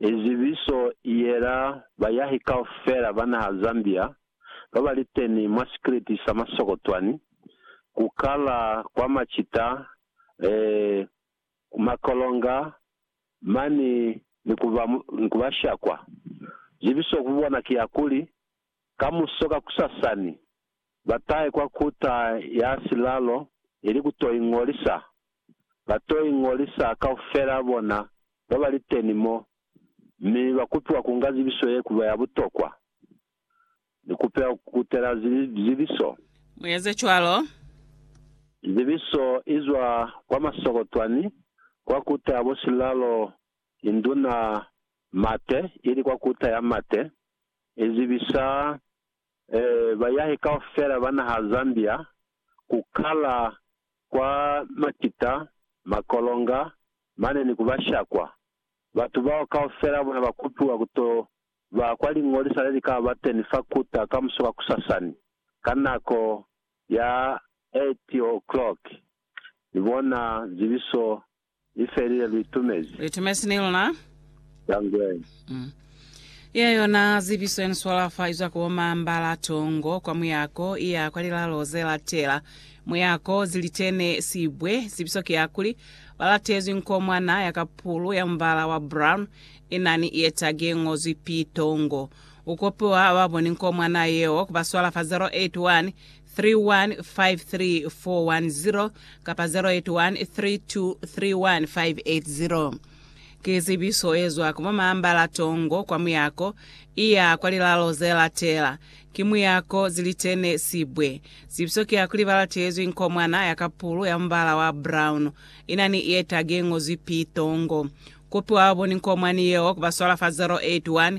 I zibiso i yela bayahi kaufela ba naha Zambia ba ba li teni mwa sikiliti sa Masokotwani ku kala kwa macita, eh, makolonga mani ni ku ba, ni ku ba shakwa. Zibiso ku bona ki ya kuli, Kamuso kakusasani, batahe kwa kuta ya silalo ili kuto iñolisa. Bato iñolisa kaufela bona babaliteni mo, mi bakupiwa kunga zibiso ye kuba ya butokwa. Nikupela kukutela zibiso. Mueze cwalo. Zibiso izwa kwa masokotwani kwa kuta ya bo silalo induna mate ili kwa kuta ya mate. e zibisa bayahi kaufela ba naha Zambia ku kala kwa makita, makolonga, mane ni ku ba shakwa. Batu bao kaufela bona ba kupiwa ku to ba kwa liñolisa le li ka ba teni fa Kuta kamuso ka kusasani ka nako ya 8:00 ni bona zibiso I felile, lu itumezi. Lu itumezi ni luna. Ya ngwe. Mm. Iya yona zibiso ya ni swala fa izwa ko mambala tongo kwa muyako iya kwa lilalo ze latela. Muyako zilitene sibwe. Zibiso ki ya kuli, ba latezwi nkomwana ya kapulu ya mubala wa brown ina ni ietag ye ngozwi P. Tongo. U kopiwa ba boni nkomwana yeo ku ba swala fa 081 3153410 kapa 081 3231580. Ki zibiso ye zwa ku bo Maambala Tongo kwa muyako iya kwa lilalo ze latela. Ki muyako Zilitene Sibwe. Zibiso ki ya kuli ba latelezwi nkomwana ya kapulu ya mubala wa brown ina ni ye tagi ye ngozwi P. Tongo. Kupi wa baboni nkomwani yeo ku ba swala fa 081